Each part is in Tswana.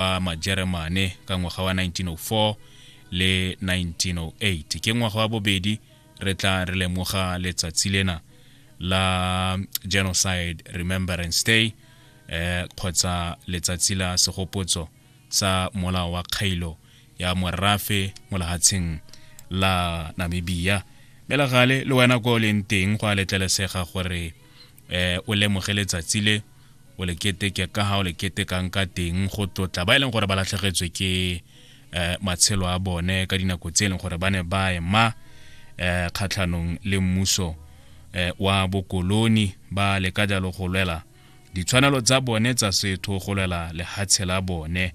ba majeremane ka ngwaga wa 1904 le 1908 ke ngwaga wa bobedi re tla re lemoga letsatsi lena la genocide remembrance day eh kgotsa letsatsi la segopotso sa molao wa kgailo ya morafe mo lehatsheng la namibia mme la gale le wena ko o leng teng go a letlelesega gore eh o lemoge letsatsi le o le keteke ka ha o le ketekang ka teng go tlotla ba e leng gore ba latlhegetswe ke eh matshelo a bone ka dinako tse e leng gore ba ne ba ema eh kgatlhanong le mmuso eh wa bokoloni ba le ka jalo go lwela ditshwanelo tsa bone tsa setho go lwela lehatshe la bone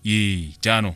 ee jaanong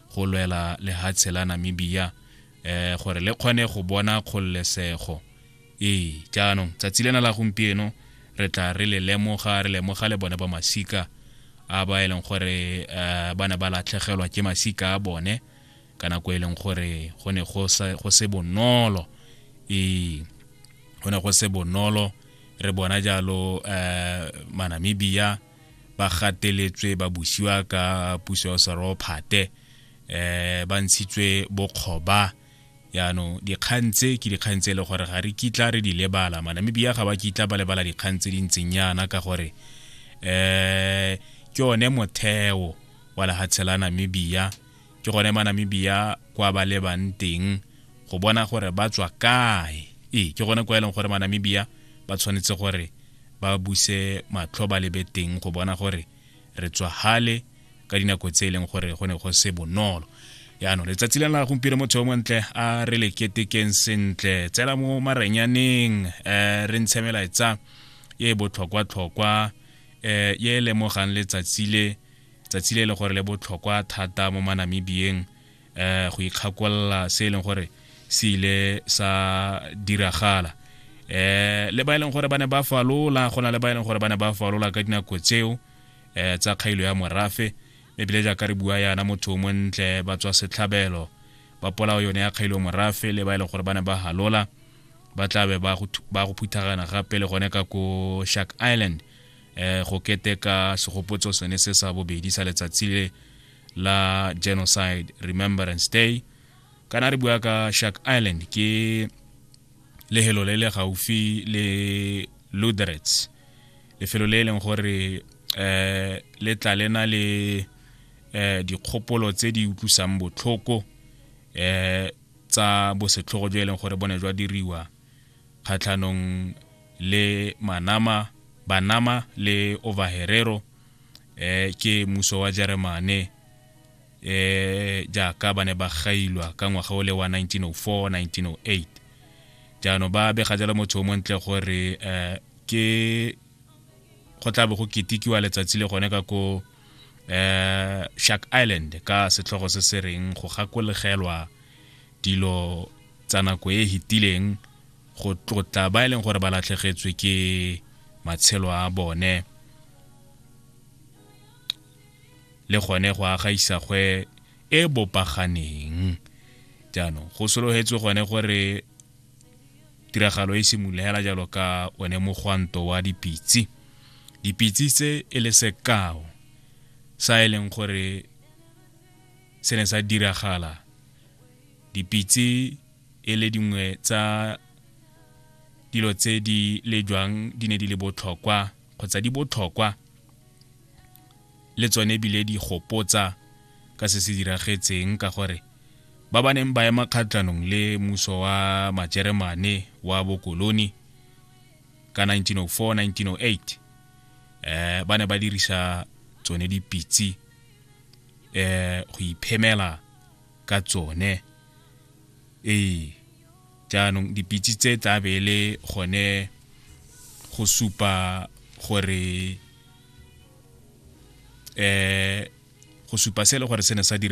go lwela lehatshe la namibia eh gore le kgone go bona kgololesego ee jaanong tsatsi lena la gompieno re tla re le lemoga re lemoga le bone ba masika a ba e leng gore eh, ba ne ba latlhegelwa ke masika a bone ka nako e leng gore go ne go se bonolo ee go ne go se bonolo re bona jalo um manamibia ba gateletswe ba busiwa ka puso ya serophate eh ba ntshitswe bokgoba yaanong dikgang tse ke dikgang tse e le gore ga re kitla re di lebala manamibia ga ba kitla ba lebala dikgang tse di ntseng yana ka gore um ke one motheo wa lehatshe la namibia ke gone manamibia kwa ba lebang teng go bona gore ba tswa kae ee ke gone kwa e leng gore manamibia ba tshwanetse gore ba buse matlho ba lebe teng go bona gore re tswa hale ka dinako tse e leng gore go ne go se bonolo yaanong letsatsi le la gompieno motho yo montle a re le ketekeng sentle tsela mo marenyaneng um re ntshe melaetsa e botlhokwa-tlhokwa um e lemogang letsatsi le tsatsi le e leng gore le botlhokwa thata mo manamibiyeng um go ikgakolola se e leng gore se ile sa diragala um le ba e leng gore ba ne ba falola go na le ba e leng gore ba ne ba falola ka dinako tseo um tsa kgailo ya morafe ebile jaaka re bua yana motho o montle ba tswa setlhabelo ba polao yone ya kgailo morafe le ba e leng gore ba ne ba halola ba tlabe ba go phuthagana gape le gone ka ko shark island eh go keteka segopotso sone se sa bobedi sa letsatsi le la genocide remembrance day kana re bua ka shark island ke lehelo le le gaufi le luderets lefelo le e leng gore um le tla le na le um dikgopolo tse di utlwisang botlhoko um tsa bosetlhogo jo e leng gore bone jwa diriwa kgatlhanong le manama banama le overherero eh ke muso wa jeremane eh jaaka ba ne ba gailwa ka ngwaga o le wa 1904 1908 jaanong ba bega jalo motho o montle gore eh ke go tla bo go ketikiwa letsatsi le gone ka ko eh Shark Island ka setlhogo se se reng go gakologelwa dilo tsa nako e hitileng go tlotla ba e leng gore ba latlhegetswe ke matshelo a bone le gone go aga isagwe e bopaganeng jaanong go sologetswe gone gore tiragalo e simolola hela jalo ka one mogwanto wa dipitse dipitse tse e le sekao sa e leng gore se ne sa diragala dipitse e le dingwe tsa dilo tse di lejwang di ne di le botlhokwa kgotsa di botlhokwa le tsone ebile di gopotsa ka se se diragetseng ka gore ba ba neng ba ema kgatlhanong le muso wa majeremane wa bokoloni ka 1904-1908 eh ba ne ba dirisa tsone dipitse eh go iphemela ka tsone ee jaanong dipitse tse tla be e le gone go supa gore um go supa se e le gore se ne sa dira